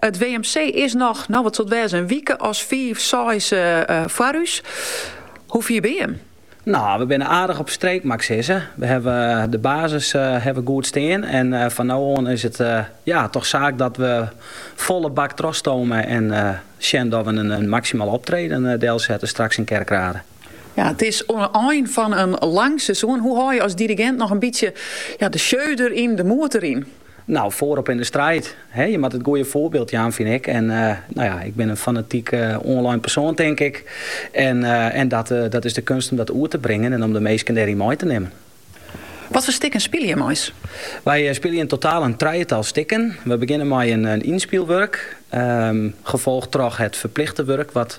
It WMC is noch, no wat sil it wêze, in wike as fiif, seis foar ús. Hoe fier binne jim? No, we binne aardich op streek mei ik sizze. We hawwe de basis hawwe we goed stean en fan no oan is it ja, toch saak dat we folle bak trochstomme en sjen dat we in maksimaal optreden delsette straks yn Kerkrade. Ja, it is oan 'e ein fan in lang seizoen. Hoe hâlje as dirigint noch in bytsje de sjeu deryn, de moed deryn? Nou, foarop yn de striid. He, je moat it goeie foarbyld jaan, fyn ik. En uh, nou ja, ik bin in fanatiek uh, online persoan, tink ik. En, uh, en dat, dat is de keunst om dat oer te bringen en om de minsken dêryn mei te nimmen. Wat foar stikken spylje jim? Wy eh, spylje yn totaal in trijetal stikken. We begjinne mei in, in ynspylwurk, ehm, folge troch it ferplichte wurk wat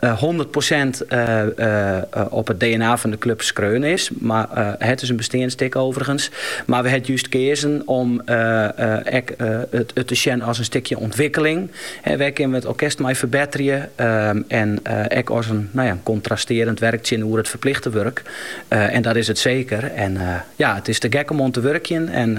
hûndert prosint op it dna fan de klup skreaun is, mar it is in besteand stik overigens. Mar we ha it just keazen om ek it te sjen as in stikje ûntwikkeling. Wêr kinne we it orkest mei ferbetterje? En ek as in nou ja, kontrastearjend wurk tsjinoer it ferplichte wurk. En dat is it seker. En ja, it is te gek om oan te wurkjen en